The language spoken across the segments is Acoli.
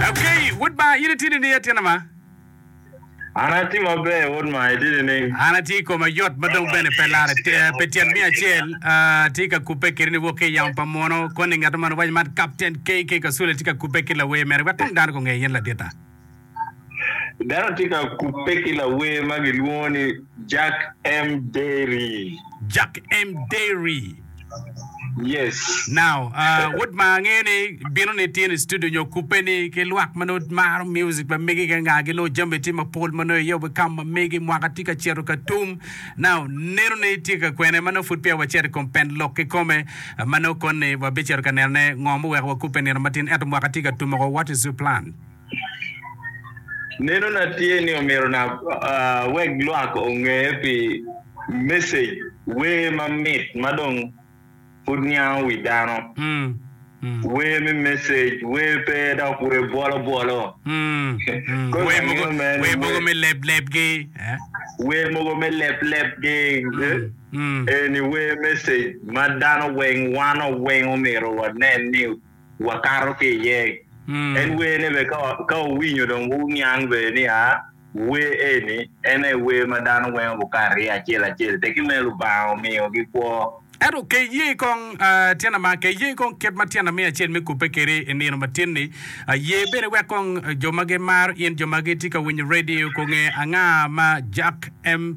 Ageyi, wod Banga, in itidi niya tyen ama? An ati maber, wod Banga, itidi ning? An ati i koma yot ma dong bene pe lare pe tyen miya acel. Ati ka kubbe kiri ni wok ki i yamo pa muno. Koni ngeto man owaco man Kapten KK Kasule ti ka kubbe ki lawer mere wek tong dano gu nge in ladita. Dano tye ka kubbe ki lawer ma gilwongo ni Jack M. Dery. Jack M. Dery. Yes. Now, uh, wood ma angeyo ni bino ni tye ni studio nyo kupe ni ki lwak ma nongo maro music ma mege ka nga gi nongo jami tye ma pol ma nongo iye obe kam ma mege mwaka tye ka cito ka tum. Now, neno ni tye ka kwene ma nongo pud peya wacito i kom pen lok ki kome ma nongo koni wabicito ka neno ne ngo muweko wa kupe nino matin ento mwaka tye ka tum oko what is your plan? Nenona tye ni omyero na wek lwak onge pi message wer mamit ma dong pud niango wi dano. Wer me message, wer pe dok wer bwolo bwolo. Wer mogo me leb leb gi. Wer mogo me leb leb gi. Eni wer message ma dano weng, wan oweng omyero wanen ni wakato ki iye. En wer ne bene ka wuwinyo dong wuniang bene nia wer eni en aye wer ma dano weng gukato iye acel acel teki me Lubanga omiyo gi kwo. Ento ke iye kong tyen ama, ke iye kong kit ma tyen ami acel me kubbe kedi i nino matin ni, ye bene wek kong jo ma gimaro in, jo ma gitye ka winyo radio gunge anga ma Jack M.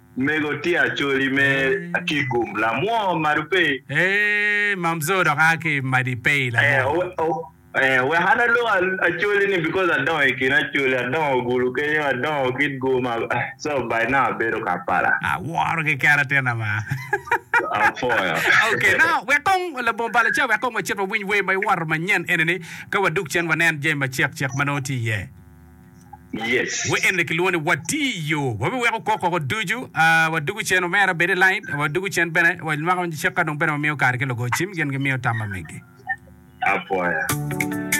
Mego tye Acholi me Akigum, lamwo Madupey. Eeh Mamzoo dok aa ki Madipey lamwo. Eeh oh eeh wek an alok Acholi ni because adongo i kin Acholi, adongo Gulu kenyo, adongo Kitgum eeh so by now abedo Kampala. Aworo keken atinna maa. Apwoyo. Okay now wek kong labongo bal aca wek kong wacit wawiny wer ma iworo manyen eni ni ka wadug cen wanen jami macek cek ma nongo tye iye. Wa eni kilwongo ni watiyo. Wabiweko kok woko ducu, wadugu cen omera bed i lain, wadugu cen bene wanywako cik ka dong bene wamiyo kare ki lugo cim gin gimiyo tam ma meggi. Apwoya.